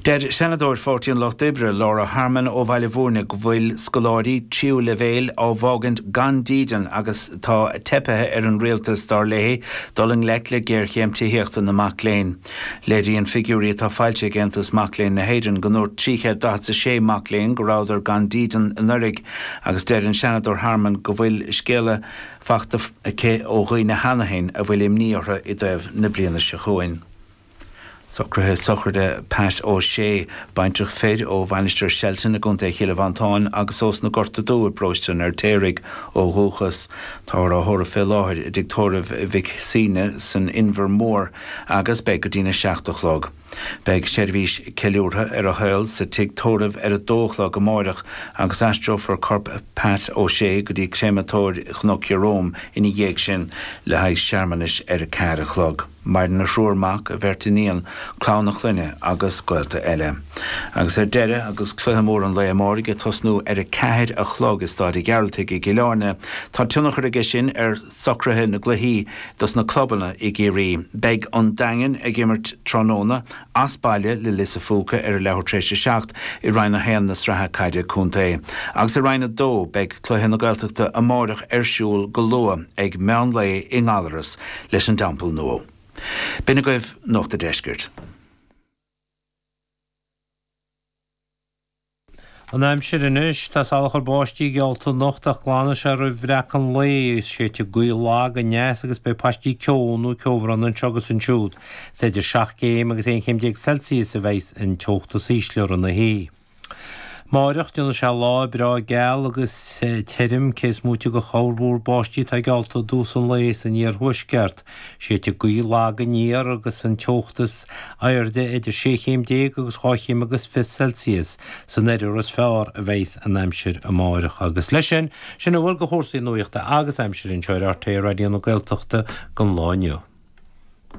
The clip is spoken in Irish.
Deir Seanadóir Pháirtí an Lucht Oibre Laura Harmon ó Bhaile Bhúirne go bhfuil scoláirí tríú leibhéil á bhfágaint gan dídean agus tá teipithe ar an Rialtas, dar léi, dul i ngleic le géarchéim tithíochta na mac léinn. Léiríonn figiúirí atá foilsithe ag Aontas Mac Léinn na hÉireann go ndúirt 346 mac léinn go rabhadar gan dídean anuraidh agus deir an Seanadóir Harmon go bhfuil scéala fachta aici ó dhaoine cheana féin a bhfuil imní orthu i dtaobh na bliana seo chugainn. Socruithe sochraide Pat O Shea, baintreach fir ó Mhainistir Shelton i gContae Chill Mhantáin agus ós na Gorta Dubh i bparóiste an Fheirtéaraigh ó dhúchas. Táthar á thórramh fé láthair i dtigh tórraimh Mhic Suibhne san Inbhear Mór agus beidh go dtína seacht a chlog. Beidh seirbhís ceiliúrtha ar a shaol sa tigh tórraimh ar a dó a chlog amáireach agus aistreofar corp Pat O Shea go dtí Créamatóir Chnoc Jerome ina dhiaidh sin le haghaidh searmanais ar a ceathair a chlog. Maireann a thriúr mac, a bheirt iníon, clann a chlainne agus gaolta eile. Agus ar deireadh, agus cluiche mór an lae amáirigh ag tosnú ar a ceathair a chlog i Stáid a Ghearaltaigh i gCill Áirne, tá tionchar aige sin ar shocruithe na gcluichí dos na clubanna i gCiarraí. Beidh an Daingean ag imirt tráthnóna as baile le Lios a' Phúca ar an leathuair tar éis a seacht i Roinn 1 na Sraithe Caide Contae. Agus i Roinn 2, beidh cluiche na Gaeltachta amáireach ar siúl go luath ag meán lae i nGallaras leis an dTeampall Nuadh. B'in agaibh Nuacht a' Deiscirt. An aimsir anois, tá salachar báistí geallta anocht ach glanfaidh sé roimh bhreacadh an lae agus séidfidh gaoth lag aneas agus beidh paistí ceo nó ceobhráin anseo agus ansiúd. Is idir seacht gcéim agus aon chéim déag Celsius a bheidhs an teocht is ísle rith na hoíche. Máireach, déanfaidh sé lá breá geal agus tirim cé is móite de chorrmhúr báistí atá geallta i dtús an lae san iarthuaisceart. Séidfidh gaoth lag aniar agus an teocht is airde idir sé chéim déag agus dhá chéim agus fiche Celsius san oirthear is fearr a bheidh's an aimsir amárach agus leis sin, sin a bhfuil de chúrsaí nuachta agus aimsire anseo ar RTÉ Raidió na Gaeltachta don lá inniu.